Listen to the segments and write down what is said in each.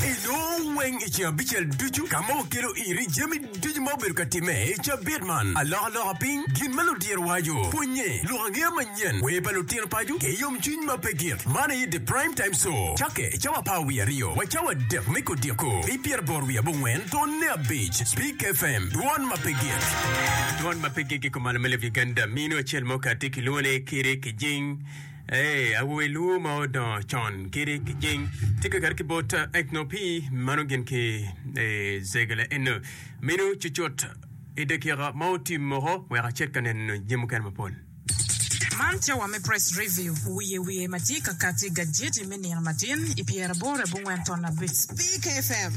Iloo weng i ceng abicel ducu ka ma okelo iri jami ducu ma obedo ka timme i cabit man. Alokaloka piny gin ma ludiro waco. Pwonye lok angeya manyen. Wer pa lutino paco ki yomcwiny ma pe gik. Man aye The Prime Time Show. Cakke cawa apar wiye aryo wa cawa adek me kodiko. Pi pyeraboro wiye abongwen tonne abic. Speak FM, dwon ma pe gik. Dwon ma pe gik i kom Alamela of Uganda. Minu acel mo kati kilwongo ni Kiri Kijing. Ee, awobe luwo ma odongo con kede kijing tye kakato ki bot Ethno pi mano gin ki Zegele eno. Minu cucut i dakika ma otim moko wek acit ka neno jami mukene mapol. Man tye wa me Press Review wiye wiye ma tye ka kati gajeti me nino matin i pyeraboro abongwen ton abic Speak FM.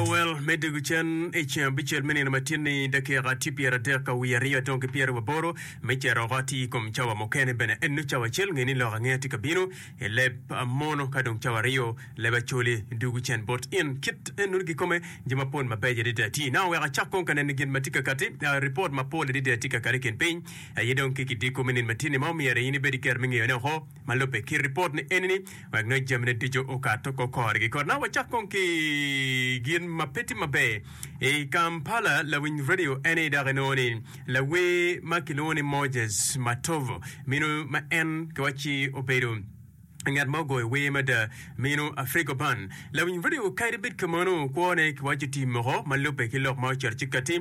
Well, me dye gucen i ceng abicel me nino matin-ni, dakika tye pyeradek ka wiye aryo dong ki pyeraboro. Me cero oko atir i kom cawa mukene bene enno cawa acel nge ni lok ange atye ka bino i leb mono ka dong cawa aryo leb acoli dugu cen bot in kit enno gikome jo mapol mabeco adada tye now wek acak kong ka neno gin matye ka kati report mapol adada tye ka kati i kin piny aye dong ki kidiko me nino matini ma omyero in ibed i kero me ngeyone oko. ma lubbe ki ripot ni eni-ni, wek nongo jamine ducu okato oko korgi. Kotna wacak kong ki gin ma pe tye maber i Kampala, lawiny radio eni dok inongo ni lawer ma kilwongo ni Moses Matovu minu ma en giwacci obedo ngat ma ogoyo wer mada minu Afrigo Ban. Lawiny radio kadi bed kamano kwone giwacci oti moko ma lubbe ki lok ma oceto ci kati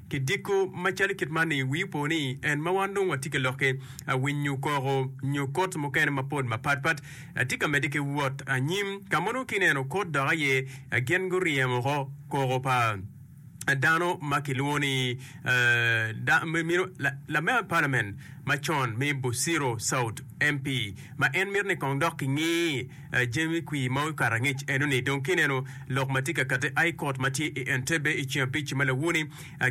Ki diko macalo kit man-ni, wii opo ni en ma wan dong watye ki lokke, winyo koko, nyo kot mukene mapol mapatpat, tye ka medde ki wot anyim. Ka ma nongo ki neno kot dok aye gin guryemo oko koko pa dano ma kilwongo ni Lamemba Palamen macon me Busiro South, MP, ma en mito ni kong dok kingi. Jamie Kwir ma okato angec eno ni dong kineno lok ma tye ka kati I court ma tye I Entebbe I ceng abic ma lawo ni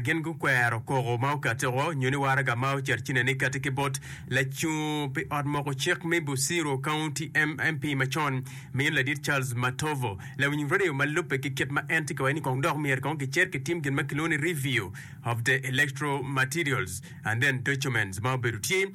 gin gukwero koko ma okati oo nyo ni waraga ma ocer cine ni kati ki bot lacung pi ot moko cik me Busiro County MP ma con ma en ladit Charles Matovo lawiny radio ma lubbe ki kit ma en tye ka waci ni kong dok myero kong kicer ki tim gin ma kilwongo ni review of the electoral materials and then documents ma obedo tye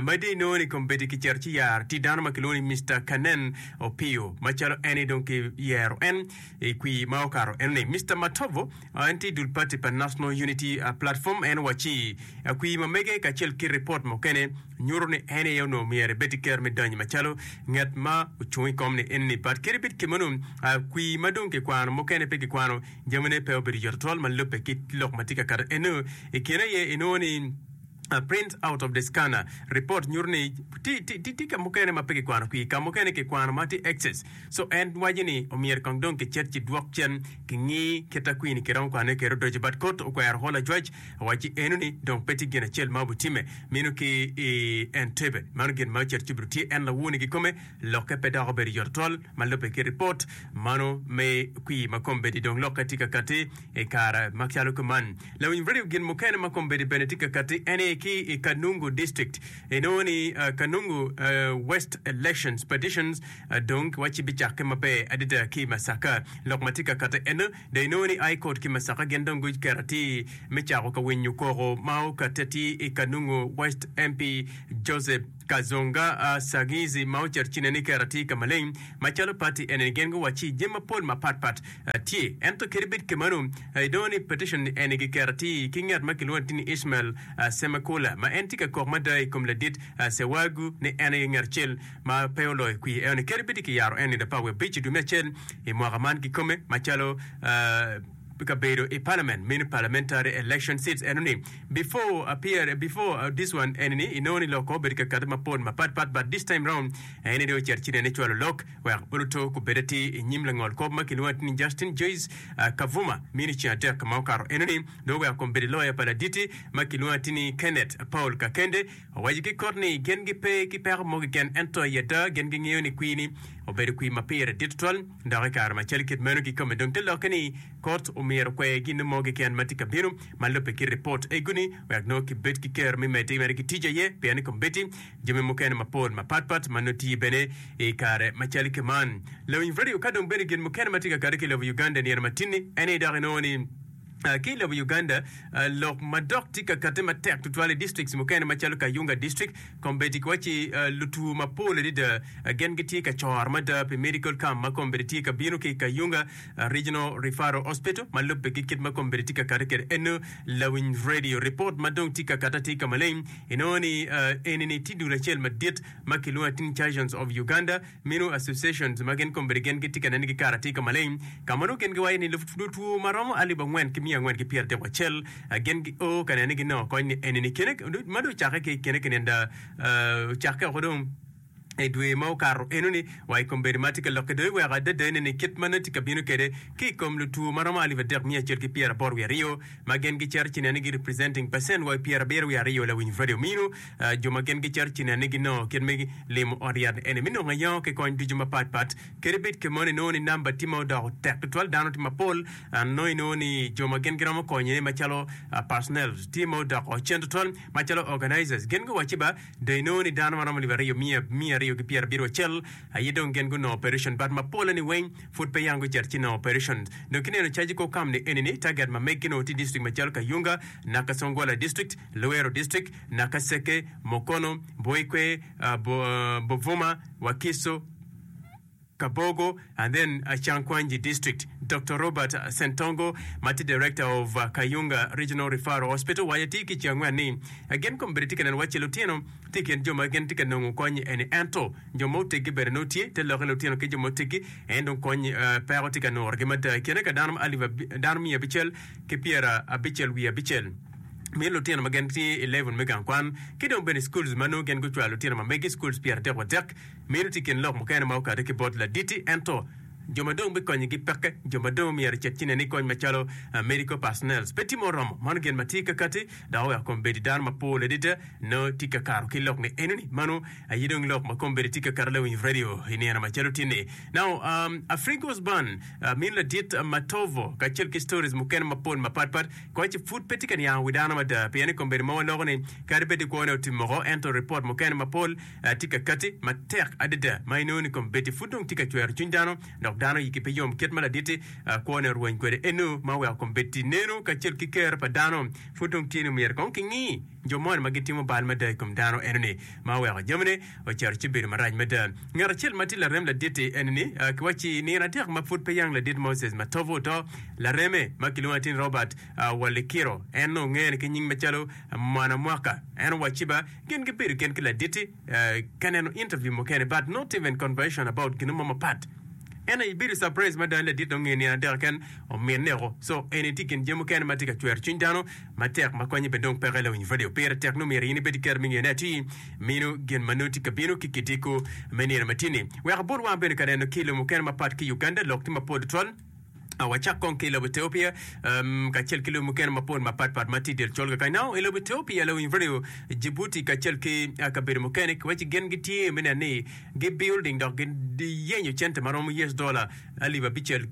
Ma dye nongo ni kombeddi kicito ci yar tye dano ma kilwongo ni Mister Kanen Opiyo macalo en aye dong ki yero en i kwir ma okato en ni Mister Matovo en tye dul party pa National Unity Platform en wacci kwir ma mege kacel ki report mukene nyuto ni en aye onongo myero ebed ki kero me donyo macalo ngat ma ocung i kom ni en ni but kadi bed kemeno kwir ma dong kikwano mukene pe kikwano jamine pe obedo yot tutwal ma lubbe ki lok ma tye ka kato eno i kine aye inongo ni A Print Out of the Scanner, Ripot nyuto ni tye ka mukene ma pe kikwano kwir, ka mukene kikwano ma tye excess. So en waco ni omyero kong dong kicit ci dwok cen kingi kit a kwir ni kiromo kwanone kede odoco. But Kot okwero holo ajwac, awaci eno ni dong pe tye gin acel ma obitimme meno ki i Entebbe. Mano gin ma ocito ci bido tye en lawur ni kikome lokke pe dok obedo yot twal ma lubbe ki ripot mano me kwir ma kombeddi dong lokke tye ka katti. I kare macalo kuman, lawiny redio gin mukene ma kombeddi bene tye ka katti ene ki i Kanungu District. Inongo ni Kanungu West Elections Petitions dong kiwacci bicakke maber adada ki i Masaka. Lok ma tye ka katti ene dong inongo ni High Court ki Masaka gin dong guketo atir me cako ka winyo koko ma okatte atir i Kanungu West MP Joseph Kazonga a Sagizi ma oceto cine ni Kera tye ka maleng macalo party eni gin guwacci jami mapol mapat pat tye ento kadi bed kemanu i dongo ni petition eni gi Kera tye ki nget ma kilwongo ti ni Ishmael Semekula ma en tye ka kok mada i kom ladit Sewagu ni en aye nget acel ma pe oloyo kwiye eno ni kadi bed ki yaro en i Lapa wiye abic i dwe me acel i mwaka man kikome macalo pi kabedo i palament meno parliamentary election seats eno ni before appear before uh, this one eni ni inongo ni lok ko obedo kakato mapol mapat pat but this time round eni dong ocito ci nene cwalo lok wek oluto kubed ati i nyim langol kop ma kilwongo ati ni Justin Joyce uh, Kavuma meno ceng adek ma okato eno ni dong oweko kom bedo loya pa laditi ma kilwongo ati ni Kenneth Paul Kakende owaco ki kot ni gin gipe ki peko mo keken ento i ada gin gingeyo ni kwir ni obedo kwir ma pire dit tutwal. Dok i kare macalo kit meno kikome dong te lokke ni kot omyero okwe gin mo keken ma tye ka bino ma lubbe ki ripot eguni wek nongo kibed ki kero me medde mere ki tic aye pien i kombeddi jami mukene mapol mapat pat ma nongo tiye bene i kare macalo keman lawiny radio ka dong bene gin mukene ma tye ka kade ki lobo Uganda i nino matini eni dok inongo ni Ki i lobo Uganda, lok madok tye ka katte matek tutwal i distrikts mukene macalo Kayunga District, kombeddi ki waco ni lutwo mapol adada gin gitye ka coro mada pi medical camp ma kombeddi tye ka bino ki i Kayunga Regional Referral Hospital ma lubbe ki kit ma kombeddi tye ka katte kwede eno. Lawiny Radio, Ripot ma dong tye ka katte atir ka maleng inongo ni eni ni tye dul acel madit ma kilwongo ni Teen Chirurgeons of Uganda, Meno associations ma gin kombeddi gin gitye ka nene ki kare atir ka maleng, ka ma nongo gin giwaco ni lub lutwo ma romo alip angwen ki miya angwen ki pyer adek wacel gin gio ka nene ki nongo kony ni enini kene ma dong ocakke ki kene kinenda ocakke oko dong i dwe ma okato enoni wa i kombeddi ma tye ka lokke dong iweko adada enini kit ma nongo tye ka bino kwede ki i kom lutwo ma romo alip adek miya acel ki pyer aboro wiye aryo ma gin gicito ci nene gi representing percent wa i pyer abiro wiye aryo Lawiny Freddie Omino Jo ma gin gicato cinennigi nongo kit me limo ot yat eni me nongo ayongo ki kony ducu mapat pat. Kadi bed kemon inongo ni namba tye ma odoko tek tutwal, dano tye mapol, nongo inongo ni jo ma gin giromo konyone macalo personnel tye ma odoko cen tutwal, macalo organizers gin guwacci ba dong inongo ni dano ma romo alip aryo miya miya aryo ki pyera abiro acel aye dong gin gunongo operation but mapolle ni weng pud pe yam gucito ci nongo operation. Dong kineno caji kor kamni eni ni target ma meggi nongo tye district macalo Kayunga, Nakasongola district, Luero district, Naka Seke, Mokono, Boikwe, Buvuma, Wakiso, Kabogo and then Chankwanji District. Doctor Robert Sentongo ma tye Director of Kayunga Regional Referral Hospital waco atir ki cengwen ni gin kombeddi tye ka neno wacci lutino tye i kin jo ma gin tye ka nongo kony eni ento jo ma oteggi bene nongo tye te lokke lutino ki jo ma oteggi en dong kony peko tye ka nurogi mada i kine ka dano alip dano miya abicel ki pyera abicel wiye abicel. mini lutino ma gin tye i level me gang kwan ki dong bene i schools ma nongo gin gucwalo lutino ma megi schools pyeratek wa dek. Meno tye i kin lok mukene ma okato ki bot laditi ento jo ma dong bikonyogi peke jo ma dong myero ecit ci nen ni kony macalo medical personnels pe tye ma oromo. Mano gin ma tye ka kati dok oweko kombeddi dano mapol adada nongo tye ka karo ki lok ni enoni. Mano aye dong lok ma kombeddi tye ka kato lawiny i radio i nino macalo tye ni. Now um, Afrigo's Band mini ladit Matovo kacel ki stories mukene mapol mapatpat Koch pud pe tye ka niango wi dano mada pien i kombeddi mogo loko ni kadi bed ni kwone otim moko ento ripot mukene mapol tye ka kati matek adada ma inongo ni kombeddi pud dong tye ka cwero cwiny dano dok dano yigi pe yom kit ma laditti kwone orweny kwede eno ma oweko kombeddi neno kacel ki ker pa dano pud dong tye ni myero kong kingi jo moni ma gitimo bal mada i kom dano enoni ma oweko jamine Ocito ci obedo marac mada. Ngat acel ma tye larem ladit-ti en ni, ki wa ci i nino adek ma pud pe yang ladit Moses ma tobe oto, lareme ma kilwongo atin Robert Walikiro, en nongo ngene ki nying macalo Mwana Mwaka, en owacci ba gin gibedo gen ki ladit-ti ka neno interview mukene but not even conversation about ginu mo mapat. En aye bedo surprise mada ni ladit dong nge nino adek keken omineko. So eni tye i kin jami mukene ma tye ka cwero cwiny dano. matek ma konye bene dong peke lawiny valeo pire tek nongo myero in ibed ki kero me ngeyo ne atir mino gin ma nongo tye ka bino ki kidiko me nino ma tye ni wek abol wang bene ka neno ki lobo mukene ma pat ki Uganda lok tye ma pol tutwal Ah, wacak kong ki i lobo Ethiopia um, kacel ki lobo mukene mapol mapat pat ma tye del colga kany nao i lobo Ethiopia lawiny valeo Djibouti kacel ki ah, kabedo mukene kiwaci gin gitye me neno ni gi building dok giyenyo cente ma romo US dollar alip abicel,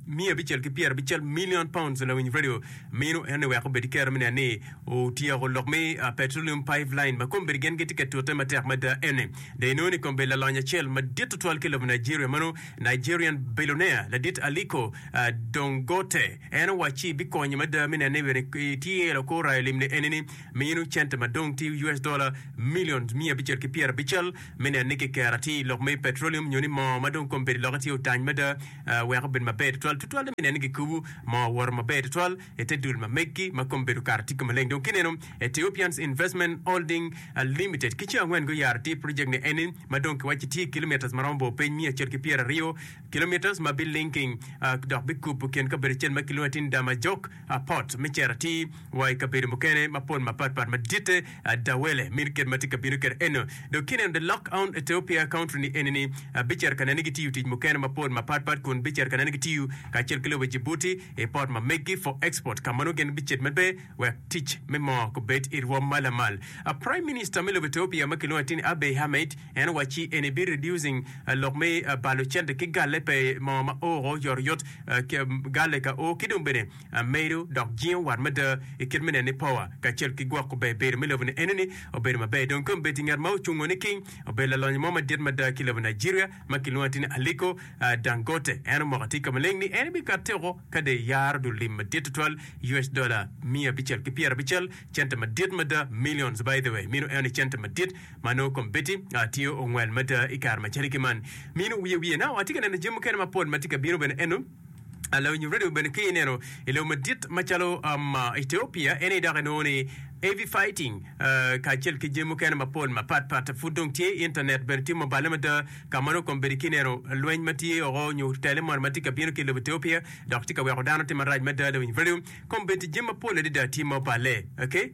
miya abicel ki pyera abicel million pounds lawiny radio mino ene wek obed ki kero me neno ni otyeko lok me petroleum pipeline ma kombedi gen gitye ka tute matek mada ene dong inongo ni kombedi lalony acel madit tutwal ki lobo Nigeria mano Nigerian billionaire ladit Aliko Dongote en owacci bikonyo mada me neno ni bene itye loko orayo limne ene ni mino cente madong tye US dollar millions miya abicel ki pyera abicel me neno ni kiker atir i lok me petrolium nyo ni moo ma dong kome bedo i lokke tye otany mada wek obed maber tutwal, tutwalle me neno ni kikubo moo owoto maber tutwal i te dul ma megi ma kome bedo okato atika maleng. Dong kineno Ethiopians Investment Holding Limited ki ceng angwen guyaro atir project ni eni ma dong kiwaco ci tye kilometres ma romo bor piny miya acel ki pyeraryo kilometres ma bi linking dok bikubo kin kabedo acel ma kilwongo ni Tindamajok Apot me cito atir wa i kabedo mukene mapol mapat pat maditte ada wele mini kit ma tye ka bino kede eno. Dok kineno the lock oun Ethiopia country ni eni ni abicito ka neni gitiyo tic mukene mapol mapat pat kun bicito ka neni gitiyo kacel ki lobo Djibouti i pot ma meggi for export ka mano gin bicit medbe wek tic me moo kubed i rwom ma lamal. A prime minister me lobo Ethiopia ma kilwongo atir ni Abiy Ahmed En owaci eni bi reducing lok me balo cente ki galle pe mo ma oo yoryot, galle ka oo ki dong bene medo dok jingo wat mada i kit me neno ni power kacel ki gwoko ber bedo me lobo ni eno ni obedo maber. Dong kong bed ngat ma ocungo niking obedo lalonyo mo madit mada ki lobo Nigeria ma ki lwongo atir ni Aliko Dangote en omoko atir ka maleng ni en bi katte oko ka dong eyaro dul lim madit tutwal us dollar miya abicel ki pyera abicel cente madit mada millions by the way minu eno ni cente madit Ma nongo kong Betty tye ongwel mada i kare macalo ki man. Minu wiye wiye. Now atye ka neno jami mukene mapol ma tye ka bino bene eno. Ah, lawinyo radio bene ki ineno i lobo madit macalo um, ah, Ethiopia, ene dok inongo ni heavy fighting, ah, kacel ki jami mukene mapol mapat pat. Pud dong tye internet bene tye mubale mada ka ma nongo kong Betty ki ineno lweny ma tye oko nyo tele moni ma tye ka bino ki i lobo Ethiopia dok tye ka weko dano tye marac mada. Lawinyo radio, kong Betty jami mapol adada tye ma obale. Okay.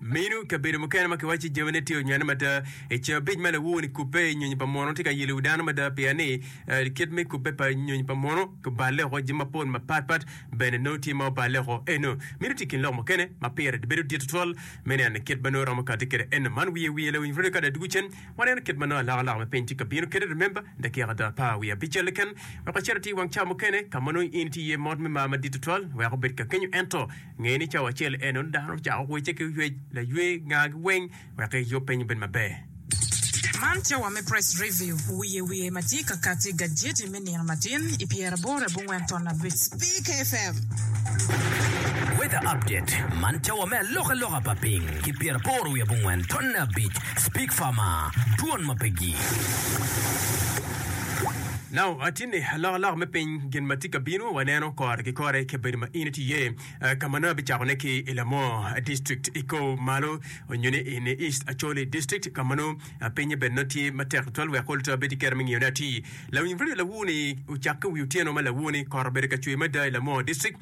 Minu kabedo mukene ma kiwaco ni jamine tye onywene mada. I cabic ma lawowo-ni kubbe, nyonyo pa muno tye ka yelowi dano mada pien ni kit me kubbe pa nyonyo pa muno kiballe woko jami mapol mapatpat bene nongo tye ma oballe woko. Eno, minu tye i kin lok mukene ma pire bedo dit tutwal me neno kit ma nongo romo kati kwede. Eno, man wiye wiye lawiny rwode ka dok dwogo cen waneno kit ma nongo alaka-laka me piny tye ka bino kwede. Remember, dakika ada pa wiye abical keken wek wacit ati i wang ca mukene ka ma nongo in itye iye mot me mar madit tutwal wek obed kakenyo. Ento, Nge ni cawa acel enoni dano ocako wece ki oyec laywe ngagi weng wek eyub piny obed maber. Man cawa me Press Review wiye wiye ma tye ka kati gajeti me nino latin i pyeraboro abongwen ton abic. Speak FM. Weather Update Man cawa me alokaloka pa piny ki pyeraboro wiye abongwen ton abic. Speak Farmer Dwon ma pegi. Now, atine alokaloka me piny. Gin ma tye ka bino waneno kore ki kore i kabedo ma in itiye, ka ma nongo abicakone ki i Lamor District i kor malo onyo ni i ni East Acholi District ka ma nongo pinye bene nongo tye matek tutwal wek ol to abed ki kero me ngiyo ne atir. Lawiny radio lawu ni ocak ki wi otyeno ma lawu ni kot obedo ka cwer mada i Lamor District.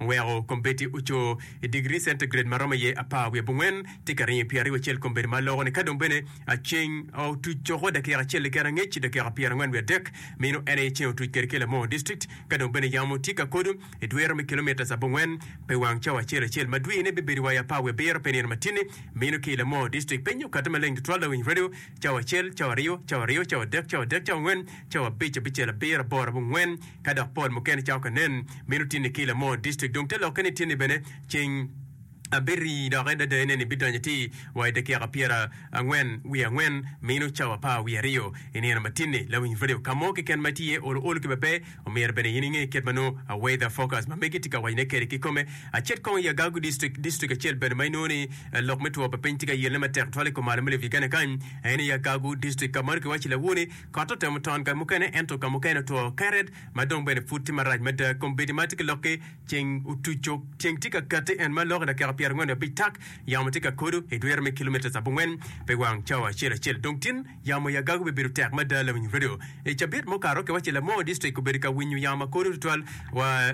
Weko kombeddi oco i digiri centigrade ma romo iye apar wiye bongwen, tika ariyo i pyeraryo acel kombeddi ma loko ni ka dong bene ceng otuc coko dakika acel i kene angec dakika pyerangwen wiye adek mino en aye ceng otuc kede kelo moo district ka dong bene yamo tye ka kodo i dwero me kilometres abongwen pe wang cawa acel acel ma dwine bibedo wa i apar wiye abiro pe nino matini mino ki ilo moo district penyo kata maleng tutwal lawiny radio cawa acel cawa aryo cawa aryo cawa adek cawa adek cawa angwen cawa abic abicel abiro aboro abongwen Ka dok pol mukene cako ka nen, mito tinni ki i Lamor District dong te lokke ni tinni bene ceng abiri dok en dadaye ne ni bidonyo ti wa i dakiaka pyera angwen wiye angwen mino cawa apar wiye aryo i nino ma tinni. Lawiny radio ka mo keken ma itye iye olo olo ki bebe, omyero bene in inge kit ma nongo a weather forecast ma megi ti ka wacone kede kikome. Acet kong i Agagu District, District acel bene ma inongo ni lok me two pa piny ti ka yelone matek twatwal i kom malo me Lake Turkana kany aye ni Agagu District ka ma nongo ki waco i lawone Kot otemo ton ka mukene ento ka mukene otwo keret ma dong bene pud tye marac mada. Kombeddi ma tye ki lokki ceng otuco. Ceng tye ka kati en ma lok i dakika pyerangwen i abic tak. Yamo tye ka kodo i dwero me kilometres abongwen pi wang cawa acel acel. Dong tin yamo i agago bibedo tek mada lawinyo redio. I cabit mukato, kiwaci Lamoo District obedo ka winyo yamo ma kodo tutwal wa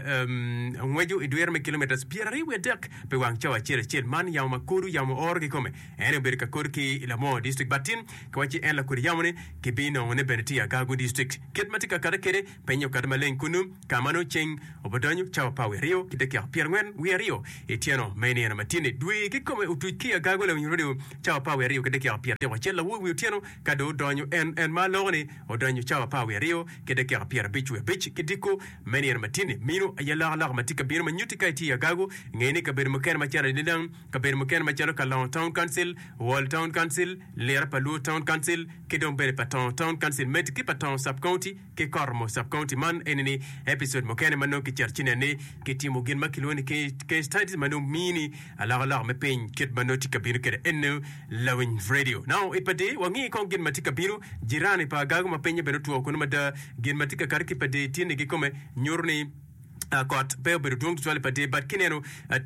ngweco i dwero me kilometres pyeraryo wiye dek pi wang cawa acel acel. Man yamo ma kodo, yamo oro kikome. En obedo ka kodi ki i Lamor District bati ki wa ci en lakodi yamo ni ki bi nongo ne bene tye i Agago District. Kit ma tye ka kati kede penye okati maleng kunu ka ma nongo ceng obidonyo cawa pa awi aryo ki dakika pyer angwen wiye aryo i tyeno ma inino ma tye ni dwe ki kome otuc ki i Agago lawiny radio cawa pa awi aryo ki dakika pyer abic wacel awobi wiye otyeno ka dong odonyo en en ma loko ni odonyo cawa pa awi aryo ki dakika pyer abic wiye abic ki diko me nino ma tye ni mino aye lok aloka ma tye ka bino ma nyuti ka itye i Agago ngeni kabedo mukene macalo Anilang Kabedo mukene macalo Kalongo Town Council, Wall Town Council, Lira pa Luo Town Council, ki dong bene pa Tongo Town Council meti ki pa Tongo Sub-County ki Koromo Sub-County. Man eni ni episode mukene ma nongo kicito ci nen ni kitimo gin ma kilwongo ni case studies ma nongo mini alokaloka me piny kit ma nongo tye ka bino kwede eno lawiny radio. Now i pa Dee wangi kong gin ma tye ka bino. Jirani pa Agago ma pinye bene otwo kunu mada. Gin ma tye ka kato ki i pa Dee tye ni gikome nyuto ni kot pe obedo dwong tutwal i pader but kineno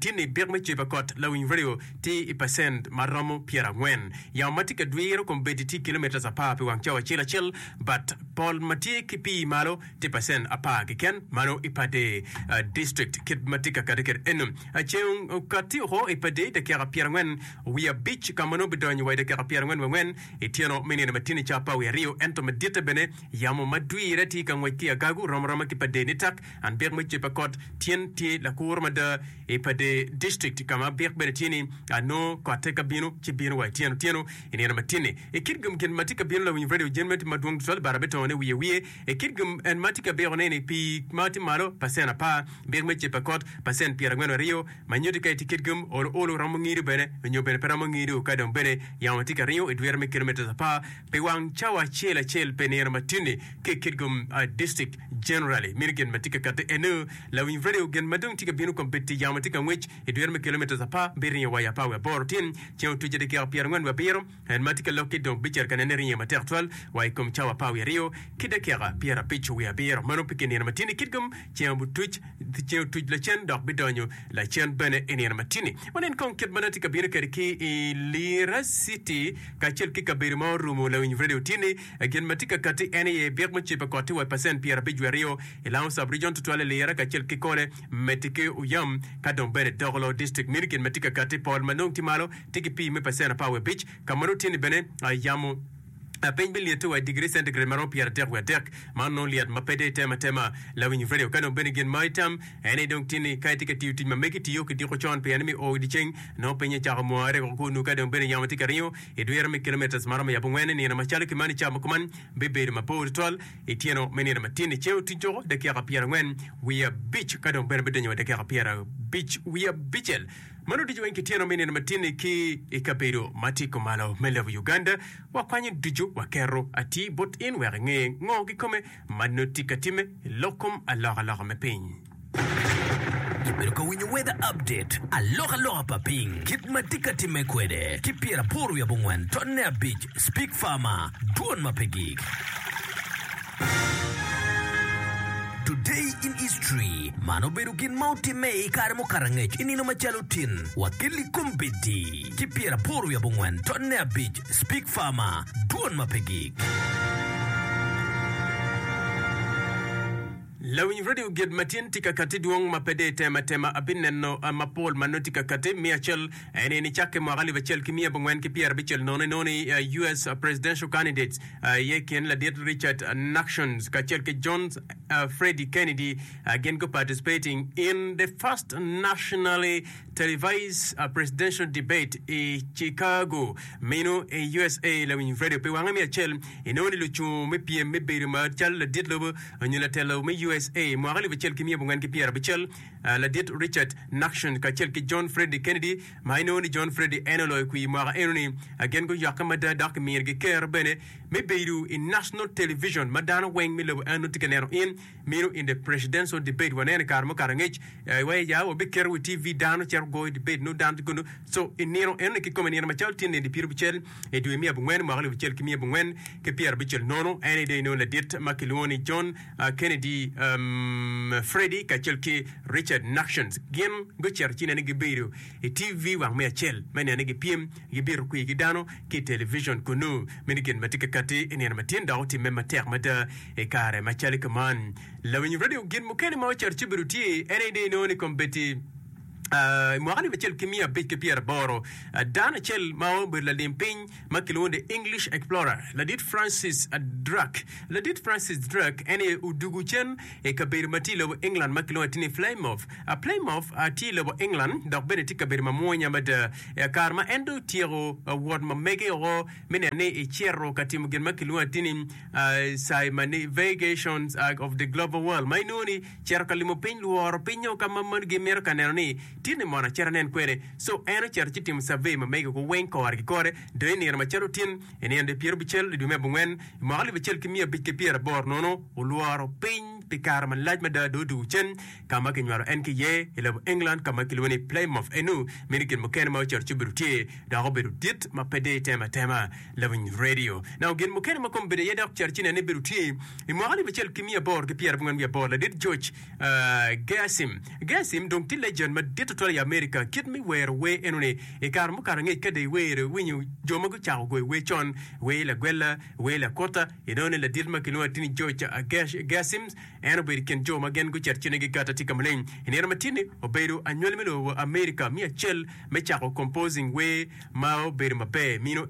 tin ni pek me cwe pa kot lawiny radio tye i pacent ma romo pyera angwen. Yamo ma tye ka dwiro kombeddi tye kilometres apar pi wang cawa acel acel but pol ma tye ki pii malo tye pacent apar kiken mano i pader district kit ma tye ka kati kede eno. Ceng okati oko i pader dakika pyera angwen wiye abic ka ma nongo bidonyo wa i dakika pyera angwen wangwen i tyeno me nino ma tini ca pa wiye aryo ento ma ditte bene Yamo ma dwire tye ka ngwec ki agagu rom aroma ki pade nitak and bik me cippa kot tyen tye lakuro mada i pade district ka ma bik bene tye ni ano kotte ka bino ci bino wa ityeno tyeno i nino ma tyenni i kit gum gin ma tye ka bino lawiny radio jemmet ma dwong tutwal bara betongo ne wiye wiye i kit gum en ma tye ka biko ne ni pi ma tye malo pacen apar bik me cippa kot pacen pyera ngwen aryo ma nyuti ka itye kit gum olo olo romo ngido bene nyo bene pe romo ngido ka dong bene yamo tye ka ringo i dwire me kilometres apar Pi wang cawa acel acel pe nino ma tini ki Kitgum District Generally mini gin ma tye ka kati enu lawiny radio gin ma dong tye ka binu kombeddi yamo tye ka ngwec i dwero me kilometres apa bi ringo wa i apar wi aboro tin ceng otuce dakika pyera ngwen wi abiro en ma tye ka lokki dong bicer ka nene ringe matek twal wa i kom cawa apar wi aryo ki dakika pyera abic wi abiro mano pi ki nino ma tini Kitgum Ceng obutuc, ceng otuc lacen dok bidonyo lacen bene i nino matini. Wanen kong kit ma nongo atye ka bino kede ki i Lira city kacel ki kabedo ma orumu lawiny radio tye ni gin ma tye ka kati en aye byek mucibe koti wa i pacent pyera abic wiye aryo i Lounge sub region tutwal i Lira kacel ki Kole, Meti ki Uyam ka dong bene Dogolo district meno gin ma tye ka kati pol ma nongo tye malo tye ki pii me pacent apar wiye abic ka ma nongo tye ni bene yamo. a piny bilyette wa i digiri centigrade maromo pyeratek wiye adek, ma onongo lyet ma pe dong itemo atema lawiny radio. Ka dong bene gin ma itam aye ni dong tini ka itye ka tiyo tic ma megi tiyo ki diko con pien me o i dye ceng, nongo piny ecako mware woko kunnu. Ka dong bene yamo tye ka ringo i dwiro me kilometres maromo yabongwen i nino macalo ki mani, camo kuman bibedo mapor tutwal i tyeno me nino matin i ceo tic doko dakika pyerangwen wiye abic ka dong bene bidonyo wa dakika pyerabic wiye abicel. Man oducu weng kityeno me nino matinni ki i kabedo ma tye kumalo me lobo Uganda. Wakwanyo ducu waketo atir bot in wek inge ngo kikome ma nongo tye ka timme i lok kom alokaloka me piny. Ibedo ka winyo weather update, alokaloka pa piny, kit ma tye ka timme kwede, ki pyerapor wiye abongwen totne abic. Speak Farmer, Dwon ma pe gik. Today in History, Man obedo gin ma otimme i kare mukato angec i nino macalo tin, wakil i kom bedi ki pyeraboro wiye abongwen tonne abic, Speak Farmer, Dwon ma pe gik. Lawiny radio gid matin tika kati dwong ma pe de itemo atema abineno mapol ma nongo tika kati miyo acel. En ni nicakke mwaka alip acel ki miya abongwen ki pyera abicel nono i nono i US. presidential candidates iye i kin ladit Richard Nixon kacel ki John Freddie Kennedy gin gu participating in the first nationally televised presidential debate i Chicago meno i USA. Lawiny radio pi wange me acel i nono ni lucung me pyem me bedo ma calo ladit lobo nyo latelo me USA. mwaka alip acel ki miya abongwen ki pyera abicel Ladit Richard Nixon kacel ki John Freddy Kennedy, ma inongo ni John Freddy en oloyo kwir i mwaka enoni, gin guyokke mada dok kiminogi ker bene me bedo i National Television ma dano weng me lobo enoni tye ka neno in mino in the Presidential Debate. Waneno i kare mukato angec wa i ya wabiketo wa i TV dano cito goyo debate nongo dano tye kunu so i nino enoni kikome nino macalo tye nino dyepirabicel i dwe me abongwen mwaka alip acel ki miya abongwen ki pyerabicel nono en aye dong inongo ladit ma kilwongo ni John Kennedy Freddy kacel ki Richard Nixon gin gucito ci nene gibedo i TV wang me acel me nene gipyem gibito kwir ki dano ki i televicion kunnu. Meno gin ma tye ka katti i nino ma tin dok otimme matek mada i kare ma cali kuman. Lawiny radio gin mukene ma ocito ci obedo tye en aye dong inongo ni kombeddi i mwaka alip acel ki miya abic ki pyeraboro, dano acel ma obedo lalim piny ma kilwongo The English Explorer, Ladit Francis Drake. Ladit Francis Drake en aye odugo cen i kabedo ma tye i lobo England ma kilwongo atir ni Plymouth. A Plymouth a tye i lobo England dok bene tye kabedo mamwonya mada. I a kare ma en dong otyeko a wot ma mege woko me neno ni ecito ka timo gin ma kilwongo atir ni a Circumnavigation of the Global World ma inongo ni cito ka limo piny, lworo piny nyo ka ma moni gimito ka neno ni Tin ni mono acit anen kwene. Co en ocito ci timo cavey ma mege ko weng kore ki kore dong i nino macalo tin i nino de pyero abicel i dwe me abongwen i mwaka alip acel ki miya abic ki pyera aboro nono olworo piny pi kare malac mada dong odwogo cen ka ma kinywalo en ki iye i lobo England ka ma kilwongo ni Plymouth enu meno gin mukene ma ocito ci obedo tye dok obedo dit ma pe deyo itema atema lawiny radio nongo gin mukene ma kome bedo iye dok cito ci nene bedo tye i mwaka alip acel ki miya aboro ki pyera abongwen wiye aboro ladit George Geasim. Geasim dong tye legend madit tutwal i Amerika. Kit me wero wer enoni, i kare mukato angec ka dong iwero, iwinyo jo ma gucako goyo wer con, wer lagwella, wer lakota, inongo ni ladit ma kilwongo ni Tiny George Geasim, en obedo i kin jo ma gin gucito cene gikato atika maleng. I nino ma tye-ni, obedo anywali me lobo Amerika me acel me cako composing wer. ma obedo maber mino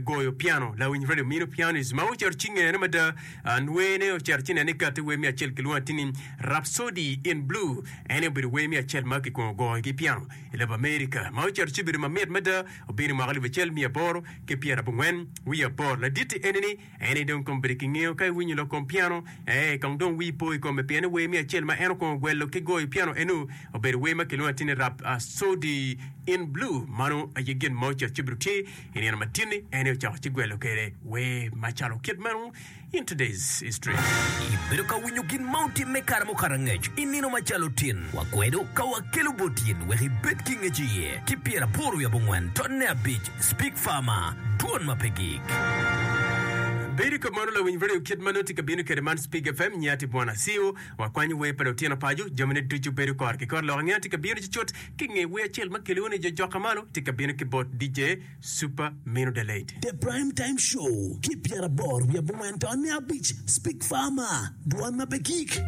goyo piano lawiny radio mino pianist ma ocito ci ngene mada anwene ocito ci nene kati wer mi acel kilwongo ati ni Rhapsody in Blue ene obedo wer mi acel ma kikwongo goyo ki piano i lobo Amerika ma ocito ci obedo mamit mada obino mwaka alip acel miya aboro ki pyera abongwen wiye aboro laditti ene ni Eni dong kong bedo ki ngeyo ka iwinyo lok kom piano, ee, kong dong wii po i kome pien ni wer me acel ma en okongo gwelo ki goyo piano eno obedo wer ma kilwongo atir ni Rhapsody in Blue. Mano aye gin ma ocito cibedo tye i nino matini, en aye ocako ci gwelo kwede wer macalo kit meno in Today's History. Ibedo ka winyo gin ma otimme kare mukato angec i nino macalo tin? Wakwedo ka wakelo bot in wek ibed ki ngec iye ki pyeraboro wiye abongwen totne abic. Speak Farmer, Dwon ma pe gik. Bedo i kop man olawiny radio kit ma nongo tye ka bino kede man Speak FM nge ati Bwana Siu wa kwanyo wer pa lutino pacu jami ne ducu bedo kor ki kor lok nge ati ka bino cucut ki nge wer acel ma kiliu ni jo jok ka malo tye ka bino ki bot DJ Super Minu the late The Prime Time Show ki pyera boro wiye bungwen to ne abic Speak Farmer, Dwon ma pe gik.